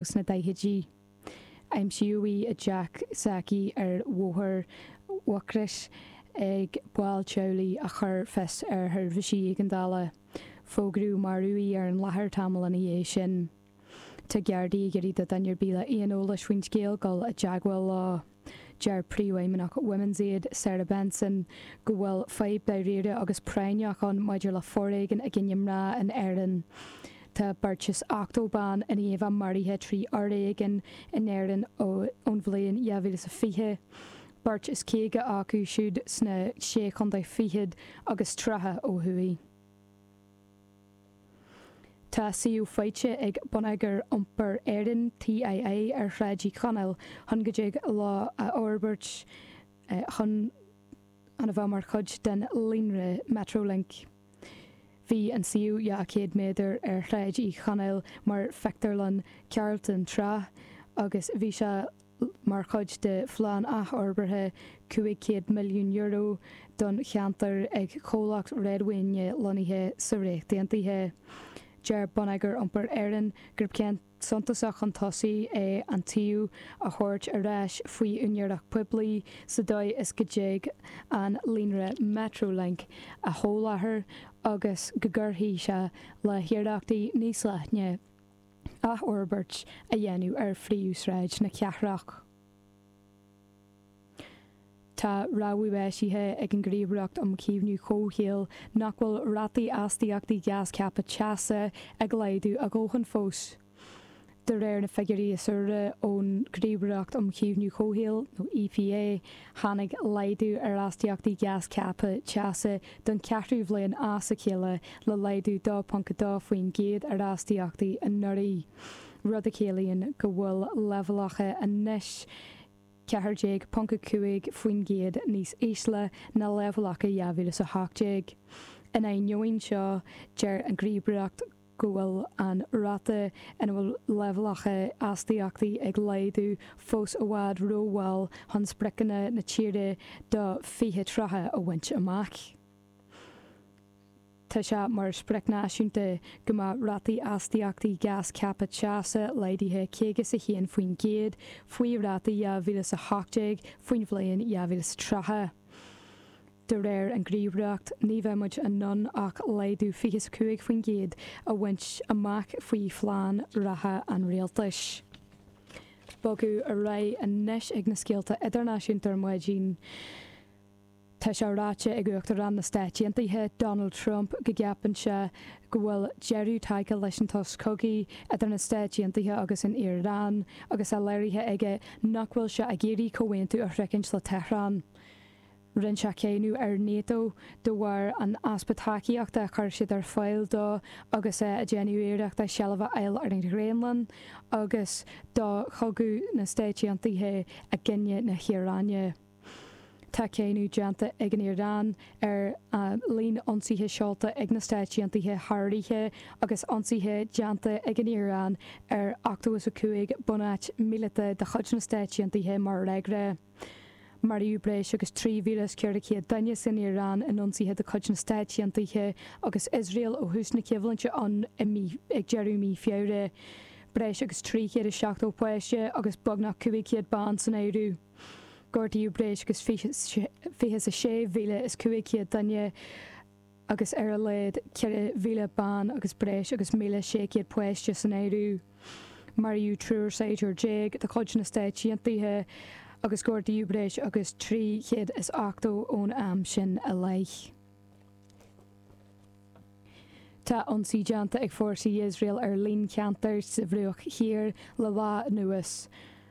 sna daichidí. Aimsíodh í i dteach s'aici ar Bhóthar Mhucrois ag baill teaghlaigh a chuir fios ar sheirbhísí éigeandála. Fógraíodh marbh í ar an láthair tamall ina dhiaidh sin. Tá Gardaí ag iarraidh do duine ar bith le aon eolas faoin scéal dul i dteagmháil leo. Deir Príomhfheidhmeannach Women's Aid, Sarah Benson, go bhfuil fadhb dáiríre agus práinneach ann maidir le foréigean i gcoinne mná in Éirinn. Tá beirt is ochtó bean i ndiaidh a maraithe trí fhoréigean in Éirinn ón bhliain 2020, beirt is caoga acu siúd sna Sé Chontae Fichead agus tríocha ó thuaidh. Tá suíomh faighte ag Bonneagar Iompair Éireann, TII, ar Shráid Uí Chonaill chun go dtig leo a fhorbairt chun chun a bheith mar chuid den líonra Metrolink. Bhí an suíomh 200 méadar ar Shráid Uí Chonaill mar phictiúrlann Carlton tráth agus bhí sé. mar chuid de phlean athfhorbartha €500 milliún don cheantar ag comhlacht réadmhaoine lonnaithe sa Ríocht Aontaithe. Deir Bonneagar Iompair Éireann gurb céim suntasach chun tosaigh é an suíomh a thabhairt ar ais faoi úinéireacht poiblí sa dóigh is go dtig an líonra Metrolink a sholáthar agus go gcuirfidh sé le hiarrachtaí níos leithne athfhorbairt a dhéanamh ar phríomhshráid na cathrach. Tá rabhadh eisithe ag an Ghníomhaireacht um Chaomhnú Comhshaoil nach bhfuil rátaí astaíochtaí gás ceaptha teasa ag laghdú a ndóthain fós. De réir na figiúirí is úire ón nGníomhaireacht um Chaomhnú Comhshaoil, nó EPA, Tháinig laghdú ar astaíochtaí gás ceaptha teasa don cheathrú bhliain as a chéile le laghdú 2.2% ar astaíochtaí anuraidh, rud a chiallaíonn go bhfuil leibhéalacha anois 14.5% níos ísle ná leibhéalacha 2018. In ainneoin seo, deir an Ghníomhaireacht go. go bhfuil an ráta ina bhfuil leibhéalacha astaíochtaí ag laghdú fós i bhfad rómhall chun spriocanna na tíre do 2030 a bhaint amach. Tá sé mar sprioc náisiúnta go mbeadh rátaí astaíochtaí gás ceaptha teasa laghdaithe 51% faoi rátaí 2018 faoin bhliain 2030. De réir an ngníomhaireacht ní bheidh muid in ann ach laghdú fiche 's a cúig faoin gcéad a bhaint amach faoi phlean reatha an Rialtais. Bogadh ar aghaidh anois ag na scéalta idirnáisiúnta ar maidin. Tá sé ráite ag Uachtarán na Stáit Aontaithe, Donald Trump go gceapann sé go bhfuil deireadh tagtha leis an tsos cogaidh idir na Stáit Aontaithe agus an Iaráin agus é léirithe aige nach bhfuil sé ag iarraidh comhaontú a shroichint le Tehran. Rinne sé cáineadh ar NATO de bharr an easpa tacaíochta a chuir siad ar fáil dó agus é ag déanamh iarrachta seilbh a fháil ar an Ghraonlainn agus do chogadh na Stáit Aontaithe i gcoinne na hIaráine. Tá cáineadh déanta ag an Iaráin ar líon ionsaithe seolta ag na Stáit Aontaithe thar oíche agus ionsaithe déanta ag an Iaráin ar ochtó is a cúig bunáit míleata de chuid na Stáit Aontaithe mar fhreagra. Maraíodh breis agus 3,400 duine san Iaráin in ionsaithe de chuid na Stáit Aontaithe agus Iosrael ó thús na coimhlinte ann i mí ag deireadh mhí Feabhra. Breis agus 370 páiste agus beagnach 500 bean san áireamh. Gortaíodh breis agus fiche is a sé mhíle is cúig chéad duine. agus ar a laghad 4,000 bean agus breis agus 1,600 páiste san áireamh. Maraíodh triúr saighdiúir déag de chuid na Stáit Aontaithe agus gortaíodh breis agus 380 ón am sin i leith. Tá ionsaí déanta ag fórsaí Iosrael ar líon ceantair sa Bhruach Thiar le lá anuas.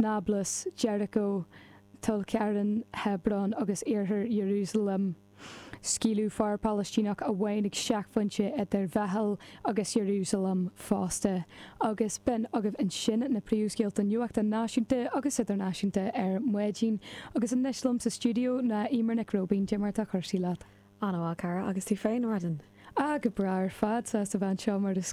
Náblas, Jericho, Tulkarem, Hebron agus Iarthar Iarúsailéim. Scaoileadh fear Palaistíneach amháin ag seicphointe idir Bheithil agus Iarúsailéim fosta. Agus b'in agaibh ansin na príomhscéalta nuachta náisiúnta agus idirnáisiúnta ar maidin. Agus anois liom sa stiúideo ná Eimear Nic Róibín. Caidé mar atá cúrsaí leat? An-mhaith, a chara. Agus tú féin, ar maidin? Ah, go breá ar fad. Sásta a bheith anseo mar is.